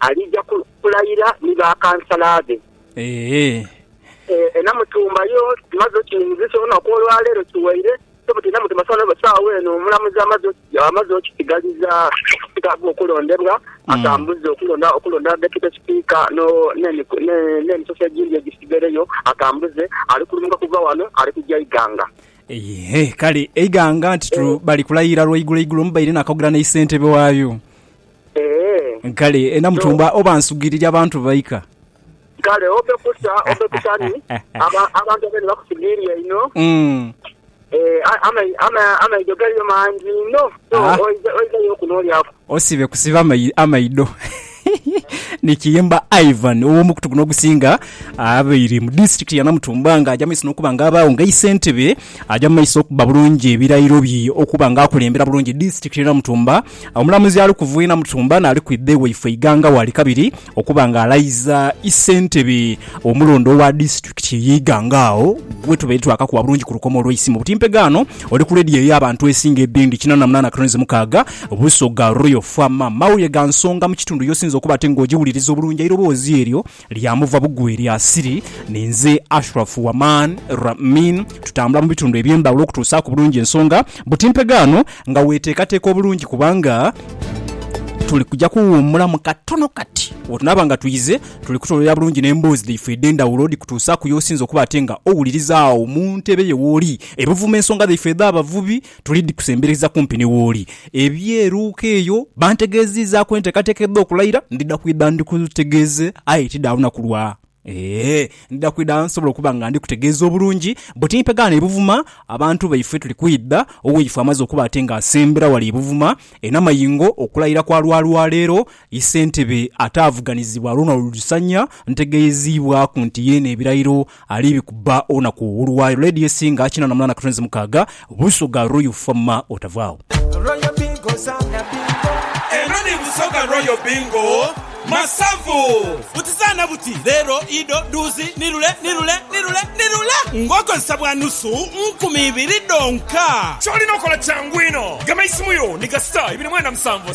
Aliija kulayira ni bakansala be. Eeh. E Namutumba yo tumaze okiwunzisa olunaku olwa leero kiwaire so but e Namutumba saagho eno omulamuzi amaze okisigaliza Sipiika agho okulondebwa atambuze okulonda okulonda Deputy Sipiika n'emisoso egindi egisigaireyo atambuze. Ali kulumuka kuva wano ali kuja Iganga. Eeh kale Iganga nti bali kulayira lwaigulo igulo mubaire nakaugula ni Ssentebe waayo. Eeh. Kale e Namutumba oba nsugiirire abantu baika. Kale ove kusa ove kusa ni aba, abantu abene bakusugiirire inho. Mm. Eeh, a, amai, ama, amaido galiyo mangi inho, so Ah. oiza, oiza yo okuno olyaku. Osibe kusiba amai, amaido. Ni Kiyimba Ivan, ow'omukutu guno ogusinga, abaire mu disitirikiti ya Namutumba ng'aja mu maiso n'okuba nga abaagho nga isentebe, aja mu maiso okuba bulungi ebirayiro bye okuba nga akulembera bulungi disitirikiti y'e Namutumba, Omulamuzi ali kuva Inamutumba n'ali kwidha ewaifwe Iganga waali kabiri okuba nga alayiza ssentebe omulonde owa disitulikiti ye Iganga agho wetubaire twakakuwa bulungi ku lukomo olweisimu buti mpegaano oli ku leediyo ey'abantu esinga edhindi kinana munana cranes mukaaga Busoga Royal Fm. Mawulire ga nsonga mu kitundu y'osinze okuba ate nga ogiwuliriza obulungi eiroboozi eryo Lyamuva bugwi lya Siri ni nze Ashraf Waman Ramin tutambula mu bitundu eby'endhawulo okutuusaaku bulungi ensonga buti mpegaano nga weeteekateeka obulungi kubanga tuli kuja kuwuumulamu katono kati bwetunaaba nga twize tuli kutoolera bulungi n'emboozi dhaifwe edh'endhawulo dhikutuusaaku y'osinze okuba ate nga owuliriza agho mu ntebe yo wooli ebuvuma ensonga dhaifwe edh'abavubi Tuli dhi kusembereza kumpi ni wooli. Eby'eruuka eyo bantegeeziizaaku enteekateeka edh'okulayira. Ndidha kwidha ndikutegeeze aye ti dha lunaku lwa. Ee, ndidha kwidha nsobole okuba nga ndikutegeeza obulungi. Bwe timpe ghano e Buvuma, abantu baife tuli kwidha owaifo amaze okuba ate nga asembera wale e Buvuma e Namayingo okulayira kwa lwa lwa leero. Ye ssentebe ataavuganizibwa Ronald Lusanya ntegeeziibwaku nti yeene ebirayiro Ali bikuba olunaku olwayo lady esinga kinana munana katonzi mukaga busoga royal fama otavaawo. Royal bingo zaana bingo. Eno ni Busoga Royal Bingo Masavu. Buti zaana buti, leero, ido, dhuuzi, ni lule, ni lule, ni lule, ni lule ng'okozesa bwa nusu nkumi ibiri dhonka. Ky'olina okola kyangu inho. Gema eisimu yo ni kasita ibiri mwenda musanvu.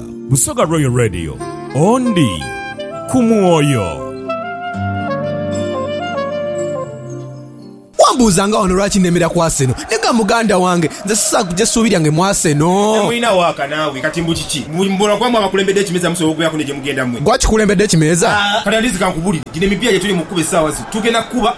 Busoga Royal Radio, Ondi ku mwoyo. Wambuuzanga wano lwaki nnemera ku Arsenal. Nega muganda wange, nze sisobola kuggya ssuubi lyange mu Arsenal. Temulina waaka naawe kati mbu kiki? Mbu mbula kuba mwe abakulembedde ekimeeza musobola okubeeraku ne gye mugenda mwe. Gwe akikulembedde ekimeeza? Kati at least kankubulire, gino emipiira gyetuli mu kukuba essaawa zino tugenda kukuba.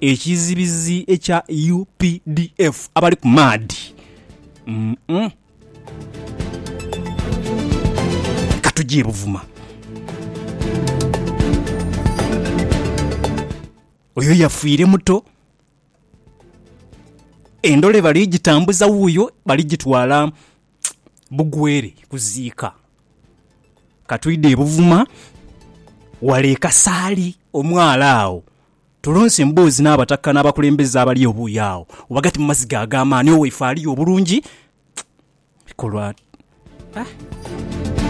Ekizibizi ekya updf abali ku maadhi umm. Leka tuje e Buvuma. Oyo yafiire muto. Endole bali gitambuza wuuyo bali gitwala Bugwere kuziika. Katwidhe e Buvuma wale e Kasaali omwaalo agho. Tulonse emboozi n'abataka n'abakulembeze abali obuuyo agho ghagati mu maziga ag'amaani. Owaife aliyo obulungi bikolwa.